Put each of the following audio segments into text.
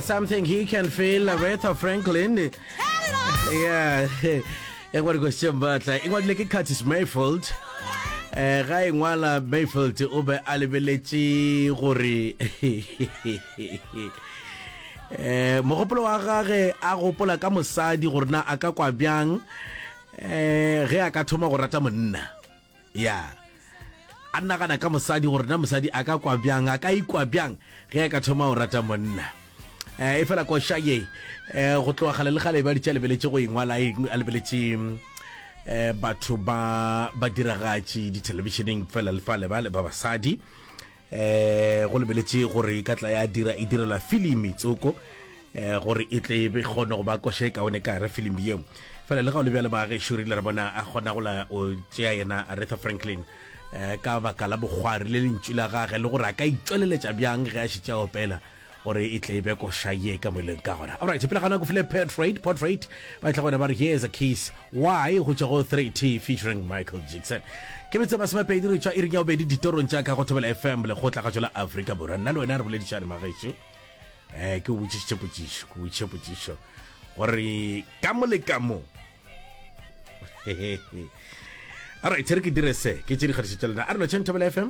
something he can feel Aretha Franklin yeah e ngwadi ko sembatla e ngwadile ke Curtis Mayfield eh ga e ngwala Mayfield o be a lebeletše gore eh mogopolo wa gage a gopola ka mosadi gore na a ka kwa bjang eh ge a ka thoma go rata monna ya a nagana ka mosadi gore na mosadi a ka kwa bjang a ka ikwa bjang ge a ka thoma o rata monna um e fela koša ye um go tloga gale le gale ba ditša lebeletše go engwala a lebeletše um batho ba ba diragatši dithelebišeneng fela le fale bale ba basadi Go lebeletše gore e ka tla ya dira e direla filimi tsoko gore e tle be kgone go ba koša e kaone ka re filimi yeo fela le ga o le bjale baagešu rile re bona a kgona go la o tšea yena aretha franklin ka baka la bokgwari le lentšu la gage le gore a ka itšweleletša bjang ge a šitša opela gore e tle e be koša ye ka moeleng ka gona. Alright, pele ga nako file Portrait, Portrait ba e tla gona ba re Here's a Kiss, Why go tšwa go 3T featuring Michael Jackson. Ke metse masomepedi re tšwa iring ya bobedi ditorong tša ka go Thobela FM le kgotla ga tšola Afrika Borwa. Nna le wena re boledišane magešo. Eh, ke o botšišitše potšišo, ke botšiše potšišo gore ka mo le ka mo Alright, re ke dire se, ke tše di kgatišitše lena. A re no tšheng Thobela FM.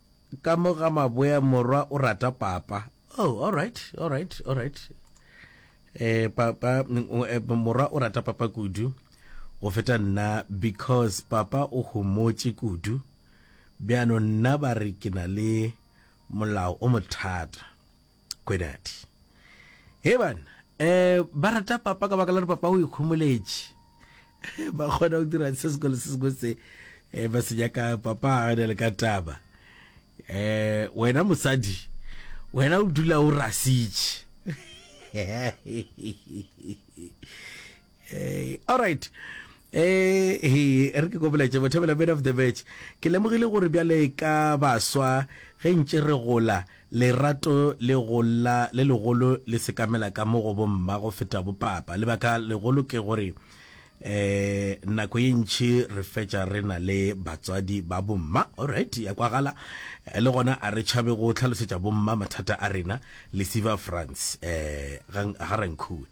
Ka mo ga maboya morwa o rata papa. Oh, all right, all right, all right. Eh, papa, eh, morwa o rata papa kudu. Go feta nna because papa o homotše kudu. Bjano nna ba re ke na le molao o mothata. Kwenadi. He banna, um ba rata papa ka baka la gore papa o ikhomoletše. Ba kgona go dira se sengwe le se sengwe se um ba se nyaka papa a ne le ka taba. Um wena mosadi, wena o dula o rasitše. Hey, all right eh he re ke go boletse bothebela bit of the match ke lemogile gore bjale ka baswa ge ntše re gola lerato le gola le legolo le sekamela ka mo go bomma go feta bopapa lebaka legolo ke gore eh nako ye ntšhi re fetša re na le batswadi ba bomma alright ya kwagala eh, le gona a re tšhabe go tlhalosetša bomma mathata a rena lesiva france eh ga ga rankhuwe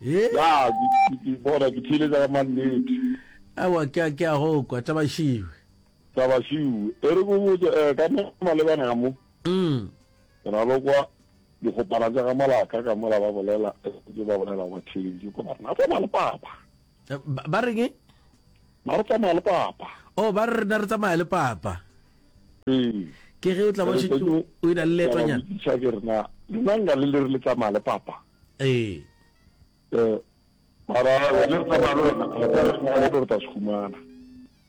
He? Ya, ke, ke, ke bona, ke theeletša ka mannete. Aowa, ke a, ke a go kwa, Tabašiwe. Tabašiwe, e re ko botša, eh, ka mo malebana ka mo, Mm. ke na le kwa dikgopana tša ga Malaka ka mola ba bolela, ke ba bolela kwa theeleditše kwa barena, re tsamaya le Papa. Eh, Ba, ba reng e? Na re tsamaya le Papa. Oh, ba re rena re tsamaya le Papa. Ee. Ke ge o tla ba o Ke re, šetše Tony, o e na le ke a ba leetonyana. botšiša ke re na, lena nka le le re le tsamaya le Papa. Ee. Ee. Mara wena o tsamaya le wena, a tla re go gona gore tla se humana.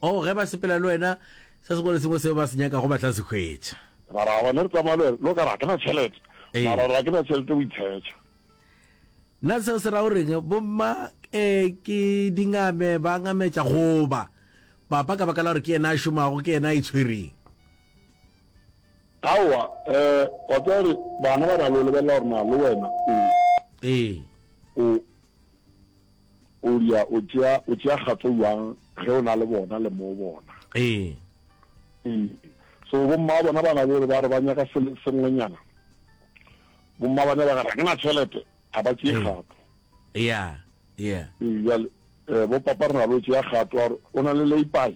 Oh, ge ba sepela le wena, se sengwe le sengwe seo ba se nyakago ba tla se hwetša. Mara wena re tsamaya le wena, le o ka re ga ke na tšhelete, mara ga ke na tšhelete o itshetša. Na seo se ra o reng? Bomma eh, ke dingame, ba ngametša goba papa ka baka la gore ke yena a šomago, ke yena a itshwereng. Aowa, um, wa tseba gore bana ba na le go lebelela gore na le wena o, Ee. o, o ria, o tšea, o tšea kgatso bjang ge o na le bona le moo bona. Ee. Ee. So bomma ba bona ba na le gore ba re ba nyaka se le sengwenyana, bomma ba ne ba re ga ke na tšhelete, ga ba tšee Ee. kgato. Yeah, yeah. Ee, bjale, um, bo papa re na le go tšea kgato ya gore o na le leipai,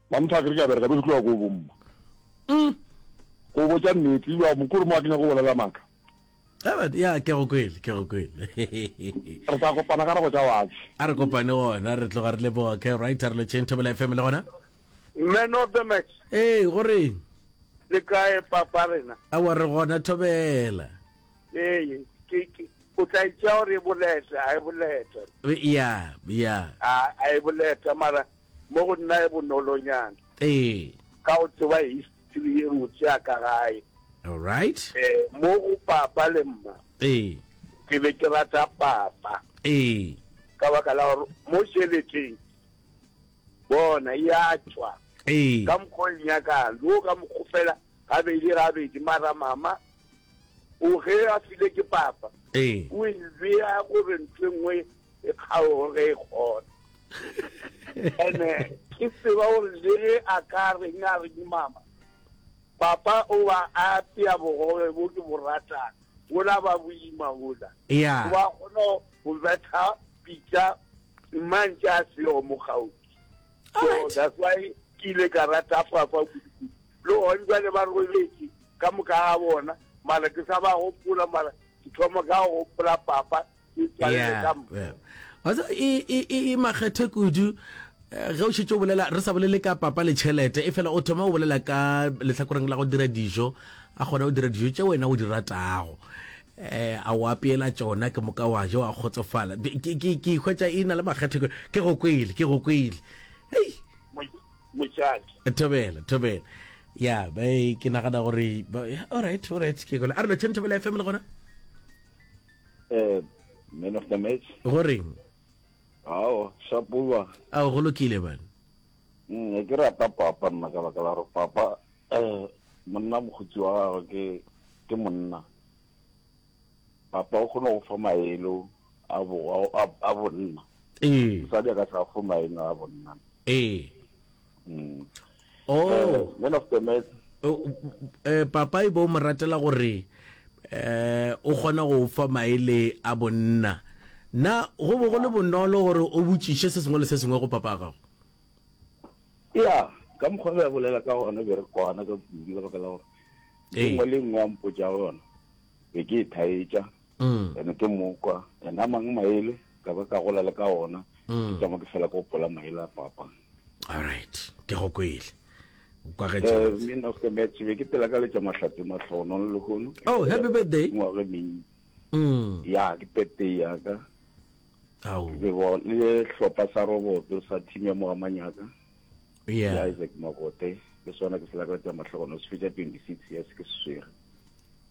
Mamthaka re ka bereka be re tloga ko bomma. Mm. Go botša nnete, wa mokuru mo a kenya go bolela maka. Ebert, ya ke go kwele, ke go kwele. Re tla kopana ka go tša watši. A re kopane gona, re tloga re le boa ke right re lo chain table FM le gona. Man of the match. Hey, go reng? Le kae papa rena? A wa re gona thobela. Hey, ke ke o tla itša gore e boleta, a e boleta. Ya, ya. A e boleta mara mo go nna e bonolonyana ee ka go tseba history ye motse ya ka gae all right eh mo go papa le mma ee ke be ke rata papa ee ka baka la gore mo šeleteng bona ya tšwa ee ka mokgwa o nyakang le o ka mokgwa fela gabedi gabedi mara mama o ge a file ke papa ee o e bea gore ntho e nngwe e kgaogo ge e kgona ene ke tseba gore le ge a ka reng a re mama papa o ba a apea bogobe bo ke bo ratang wola ba boima wola o ba kgona go betha pitša mmantše a seo mo gaufi so that's why ke ile ka rata papa kudu le gone jale ba robetse ka moka ga bona mara ke sa ba gopola mara ke thoma ka go gopola papa e makgethe kudu eh, ge o šetse o bolela re sa bolele ka papa le tšhelete e fela o thoma o bolela ka lehlakoreng la go dira dijo a kgona go dira dijo tše wena o di ratago eh a o apeela tsona ke moka wa je wa kgotsofala ke hwetsa e na le makgethe ke go kwele ke go kwele ei mochaki thobela thobela ya ba ke nagana gore alright alright ke gole a re lo tshentho bela fm le gona Eh, man of the match. go reng Ao, shapuwa. a go lokile bana Mm, ne ke rata papa nna ka baka la gore papa eh monna mokgotsi wa gagwe ke ke monna papa o kgona go fa maelo a bo a- a- a bonna ee mosadi a ka sa fo maelo a bonna ee mm. oh. uh, one of the men uh, uh, papa e bo mo ratela gore eh o kgona go fa maele a bonna na go bo go le bonolo gore o botšiše se sengwe le se sengwe go papa gago ya ka mokgwa ba bolela ka gona be re kwana ka kudu ka baka la gore nngwe le nngwe a mpotsa gona be ke e thaetša ene ke mokwa ene a mang maele ka ba ka gola le ka ona ke tšama ke fela ko pola maele a papa alright ke go kwele Eh, min of the match be ke pela ka letša mahlatse mahlono le lehono oh happy birthday ngwage meng mm. ya ke birthday ya ka le hlopha sa roboto sa team ya mogamanyaka yeah. ke isaac mogote ke swana ke selaka tsa matlhogono se fetsa 26 years ke seswere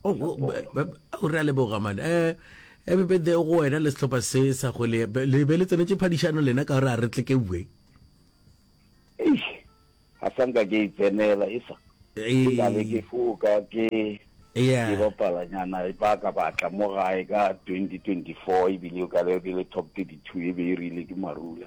o oh, re a leboga mane um ebe eh, bede go wena le setlhopha se sa go le be le tsenetse phadišano lena ka gore a re tle ke bue a sanka ke itsenela e sa ee. ke ke foka ke ke bapalanyana e ba ka batla mo gae ka 2024 ebile o ka le top 32 e be e rile ke marula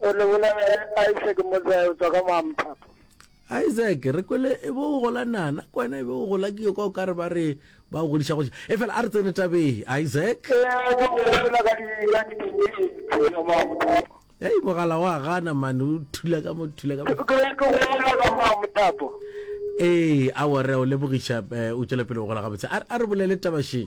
O lebola Isaac Modzai o tswa ka Moamphapo. isaac re kwele e bo o gola nana ke wena e be o gola ke yo ka o ka re ba re ba o godiša goša e fela a re tsene tabeng isaac Ee, go bolela ka di ka di teenage tsa Moamphapo. ei mogala wa gana mane o thula ka mo thula ka Ke mo ke ke go bolela ka Moamphapo. ee a wore o lebogiša eh, o tšwela pele o gola gabotse a a re bolele tabasheng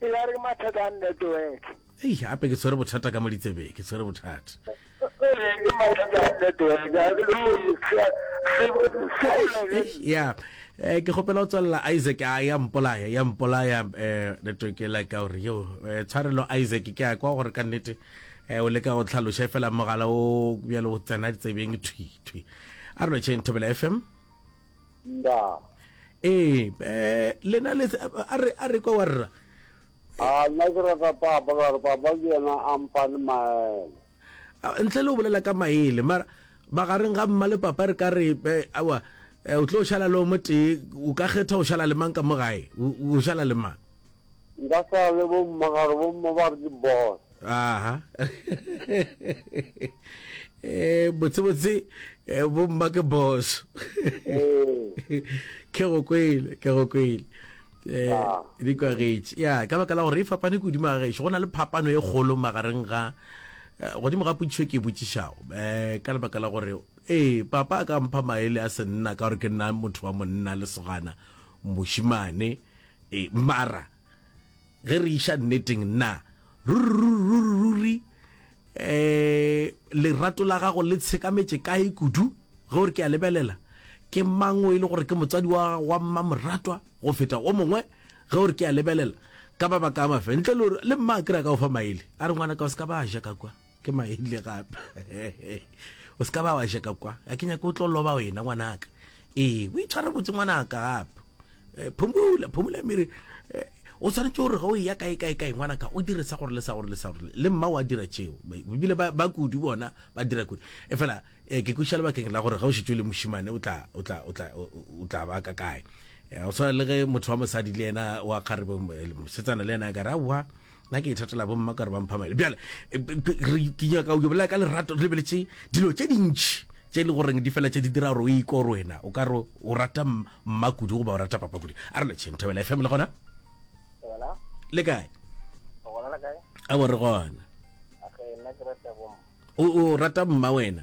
e ya re mathata a network ei gape ke tshwere bothata ka mo ditsebeng ke tshwere bothata ke mathata a network a ke lo se se golele ya eh ke gopela o tswalla Isaac a ya mpolaya ya mpolaya eh network la ka gore yo eh, tshwarelo Isaac ke a kwa gore ka nnete eh o leka go tlhaloša fela mogala o bjalo o tsena ditsebeng thwi thwi a re lo tšheng thobela fm Ndaa. Ee, eh, lena le a re a re kwa wa rra. A nna ke rata papa ka re papa ke yena a mpane maele. Ntle le o bolela ka maele, mara magareng ga mma le papa re ka re awa o tlo šala le o motee o ka kgetha o šala le mang ka mo gae o šala le mang Nka sa le bomma gare bomma ba re ke boss. Aha. eh botse botse eh, bomma ke boss. Eh. Ke go kwele, ke go kwele. Eh, ah. di kwa getse ya ka baka la gore e fapane ke godimo ga gešo go na le phapano e kgolo magareng ga eh, godimo ga potšišo ke e botšišago um ka lebaka la gore ee papa a ka mpha maele a senna ka gore ke nna motho wa monna lesogana mošimane E, mara ge re iša nneteng, nna ruri um lerato la gago le tshekametše kae kudu ge o re ke a lebelela? Ke mang o e le gore ke motswadi wa gago wa mmamoratwa go feta o mongwe ge o re ke a lebelela? Ka mabaka a mafe ntle le gore le mma a kry-a ka go fa maele a re ngwana ka o se ka ba a ja ka kwa. ke maile gape o se ka ba wa jeka kwa a ke nyake o tlo loba wena ngwanaka ee o itshware botse ngwanaka gape eh, phumula phumula mere eh, o tshwanetse gore ga o ya kae kae kae ngwanaka o dire sa gore le sa gore le sa gore le mma wa dira tšeo ebile ba kudu bona ba dira kudu e fela eh, ke kuša lebakeng la gore ga o šetse le mošimane o tla ba ka kae o tshwana le ge motho wa mosadi le ena wa kgarebe setsana le ena a kare aowa nna ke ithatela bomma ka re ba mphamele bjale e, ke nyaka o bolela ka lerato re lebeletse dilo tse dintšhi tse e le goreng di fela tse di dira gore o iko gore wena o ka re o rata mma kudu goba o rata papa kudu a re letšheng thobela e family gona le kae a bo re gona o rata mma wena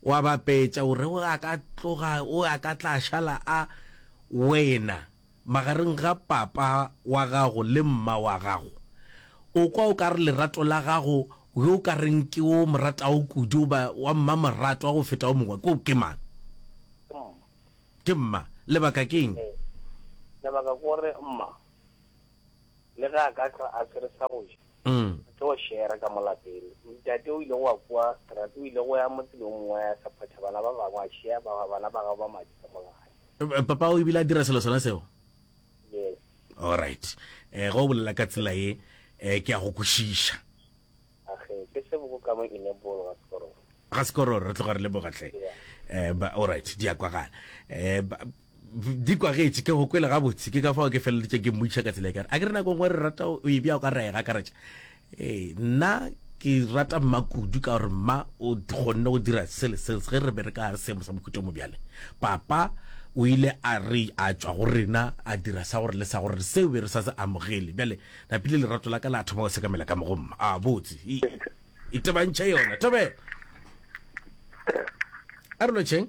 O a bapetša, o re o a ka tloga, o a ka tla šala a wena magareng ga papa wa gago le mma wa gago. O kwa o ka re lerato la gago, yo o ka reng ke wo o mo ratago kudu goba wa mmamoratwa go feta wo mongwe, ke ke mang? Ke mma. Lebaka ke eng? Lebaka ke gore mma le ge a ka hlwa a se re sa go ja, Mm. Re tlo go share ka mo lapeng. Ntate o ile go a kwa strat, o ile go ya motseng o mongwe a sa phatha bana ba bangwe a share ba bana ba gabo ba madi ka mo gae. Eh, papa o ibile a dira selo sona seo? Yes. All right. Eh, go bolela ka tsela ye, eh, ke a go kwešiša. Age, ke se boko ka mo enable ga sekoro. Ga sekoro re tloga re leboga tle. Yeah. Eh, ba all right, di a kwagala. Eh, ba, Di kwa getse, ke go kwele gabotse, ke ka fao ke feleletše ke mmotšiša ka tsela e kare, a ke re nako ngwe re rata o e bja o ka ra e gakaretša. Ee, nna ke rata mma kudu ka gore mma o kgonne go dira sele sele ge re bereka gare seemo sa mohuta mo bjale. Papa o ile a re a tšwa go rena a dira sa gore le sa gore seo be re sa se amogele. Bjale napile lerato la ka la thoma go sekamela ka mo go mma. A botse. E, itebantšhe yona. Thobela. A re lotšheng.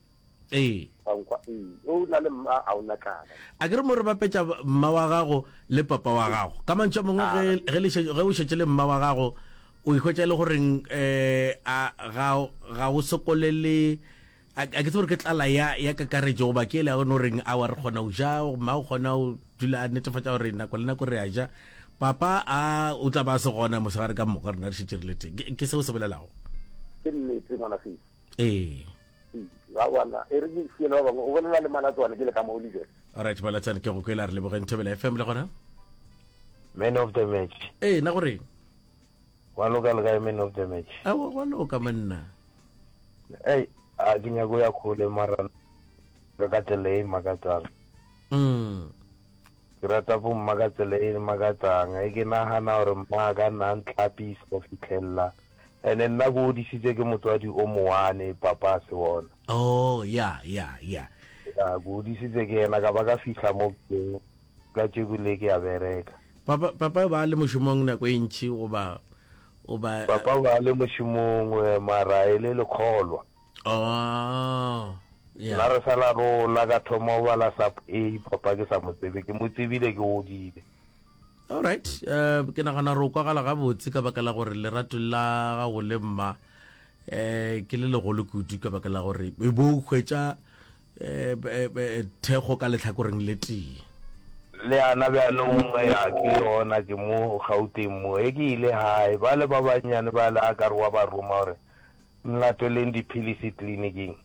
Ee. Wa nkwa? Ee. O na le mma, a o na tlala. A ke re mo re bapetša mma wa gago le papa wa gago? Ka mantšu a mangwe, ge, ge le šetše, ge o šetše le mma wa gago, o e hwetša e le goreng, eh, a ga, ga o sokole le, a, a ke tsebe gore ke tlala ya, ya kakaretšo goba ke yela ya gona o reng, aowa re kgona go ja, mma o kgona go dula a netefatša gore nako le nako re a ja, papa a, o tla ba a se gona mosegare ka moka rena re šetše re le teng. Ke, ke se o se bolelago? Ke nnete, ngwanafesi. Ee. Ga gona. E re ke isiele ba bangwe. O bolela le Malatswane ke le ka mo Oliver. Alright Malatsane ke go kwela re lebogeng Thobela FM le gona. Man of the match. Ee na gore. Wa loka le kae man of the match. A wa wa loka manna. Hey, a ke nyako ya khole mara ka ka tsela e makatsang. Mm. Ke rata bo mma ka tsela e makatsang. E ke nagana gore mma ka nna ntlapisa go fitlhelela. Ene nna ke odišitše ke motswadi o moane, papa a se wona. Oh, ya, ya, ya. Ya, ke odišitše ke yena, ka ba ka fihla mo ke, ka tšeku le ke a bereka. Papa, papa ba le mošomong nako e ntši, goba, goba. Papa ba le mošomong, mara e le lekgolwa. Oh, ya. Nna re sa la rola, ka thoma go bala sub A, papa ke sa mo tsebe, ke mo tsebile ke godile. Alright, uh, ke nagana re o kwagala gabotse ka baka la gore lerato la gago le mma eh ke le legolo kudu ka baka la gore e bo o hwetša eh, eh, eh, thekgo ka letlhakoreng le tee le ana bjanong ya ke yona ke mo gauteng mo e ke ile gae ba le ba bannyane ba le a ka re wa ba roma gore nlatweleng diphilisi tleliniking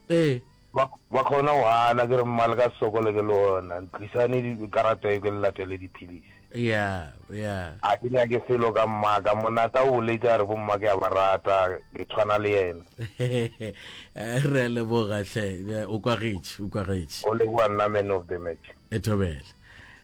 ee Ba, ba kgona go gana, ke re, Mma, le ka se sokole ke lona. Ntlisane di, karata ye ke le latele dipilisi. Ya, ya. A ke nyake selo ka mmaka. Monata o boletše a re, Bomma ke a ba rata, ke tshwana le yena. Re a leboga, hle. O kwagetše, o kwagetše. Go leboga nna man of the match. Thobela.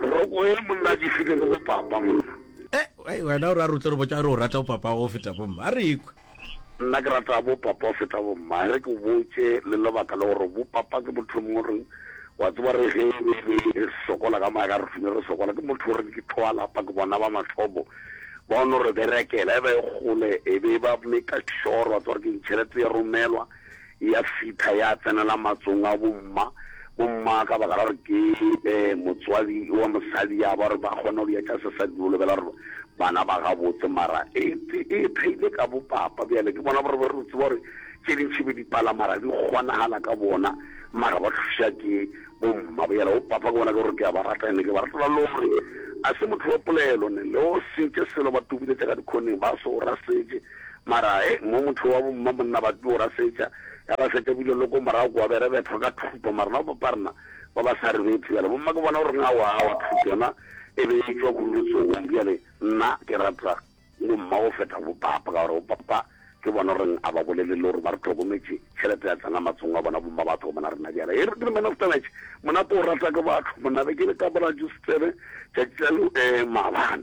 Roko ye monna ke file le go papa monna. Eh, wena o re a re o tlo re botša re o rata bo papa go feta bo mma. A re ikwe. Nna ke rata bo papa go feta bo mma. Re ke o botše le lebaka le gore bo papa ke motho yo mongwe reng wa tseba re ge e be re sokola ka maaka re thune re sokola ke motho gore ke tloa lapa ke bona ba mathobo ba o no re berekela e ba e gole e be ba make sure wa tseba gore ke ntšhelete ya romelwa ya fitha ya tsenela matsong a bomma. Bomma ka baka la gore ke motswadi wa mosadi ya ba gore ba kgona go ya tša sesadi o lebela gore bana ba gabotse mara e theile ka bopapa bjale ke bona gore ba re tseba gore tše dintšhi be di pala mara di kgonagala ka bona mara ba thuša ke bomma bjale o papa ke bona ke gore ke a ba rata ene ke ba ratela le gore a se motho wa polelo ne le o sentše selo ba tubuletša ka dikhoneng ba se o rasetše Mara he, mo motho wa bo mma monna ba tlo rasetša, ya ba feta bile lo ko morago kwa bere bethwa ka thuto, mara no papa rena ba ba sa re bethi bjale bomma ke bona gore nga wa wa thuto yona e be e tšwa kudu letsogong bjale nna ke rata bo mma go feta bo papa ka gore bo papa ke bona gore a ba bolele le gore ba re tlhokometše tšhelete ya tsena matsong a bona bomma ba tlhokomela rena bjale e re ke man of the match mona ko rata ke batho monna be ke le ka bora juice tsebe tšatši la lo eh maabane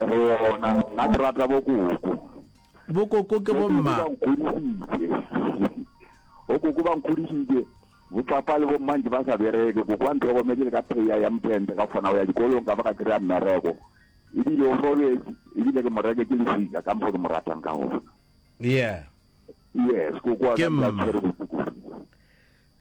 Rona nna ke rata bokoko. Bokoko ke bomma. Bokoko ba nkgodisitse bo papa le bomma ntse ba sa bereke koko wa ntlhokometse le ka pheya ya mphente ka kgona go ya dikolong ka ba ka kry-a mmereko ebile o robetse ebile ke moreke ke lefika ka mpo ke mo ratang ka gona yeah yes koko wa ka tshwere botuku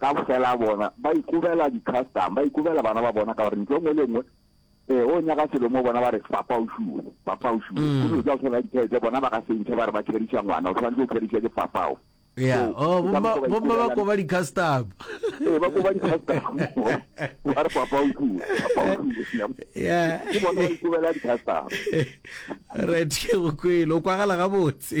ka fela bona ba ikobela di custom ba ikobela bana ba bona ka gore ntlo ngwe le ngwe eh o nyaka selo mo bona ba re papa o shuwe papa o shuwe mm. o tla tshwana dithete bona ba ka se ntshe ba re ba tshedisa ngwana o tshwanetse o tshedisa ke papa o ya oh bomma bomma ba koba di custom eh ba koba di custom ba re papa o shuwe papa o shuwe ya ke bona ba ikobela di custom right ke go kwelo o kwagala ga botse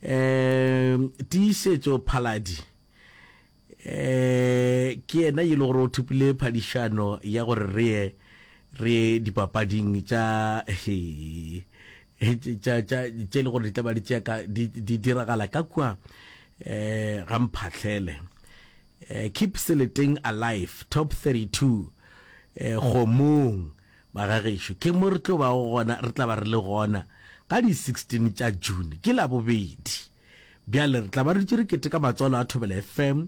Eemm tiišetšo Phaladi eemm ke yena yo e le gore o thopile phadišano ya gore re ye re ye dipapading tša hee tša tša tše e le gore di tla ba di tšea ka di di diragala ka kua eemm ga mphatlhele eemm keep seleteng alive top 32 eemm kgomong Bagagešo, ke mo re tlo bago gona, re tla ba re le gona ka di 16 tša June, ke Labobedi. Bjale re tla ba re dutše re keteka Matswalo a Thobela FM,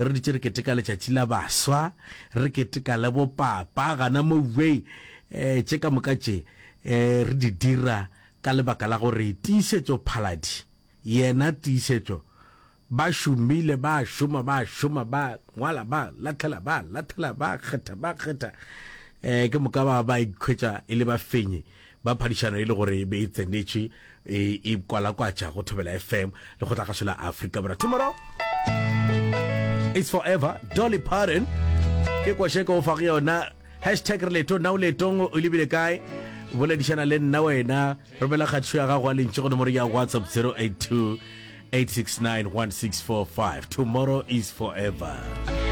re dutše re keteka Letšatši la Baswa, re keteka le bo Papa, gana mowei, eh, tše ka moka tše, eh, re di dira ka lebaka la gore tiišetšo-phaladi, yena tiišetšo, Ba šomile, ba a šoma, ba a šoma, ba ngwala, ba lathela, ba lathela, ba kgetha, ba kgetha. Um ke moka ba ba ikhwetša e le bafenyi ba phadišano e le gore e be e tsenetše e e kwalakwatša go Thobela FM le go tla gašo la Afrika Borwa. Tomorrow is forever. Dolly Parton ke kwasheko o fa go yona. Hashtag re leetong na o leetong o lebile kae boledišana le nna wena romela kgathišo ya gago a lentše go nomoro ya whatsapp 082 869 1645 tomorrow is forever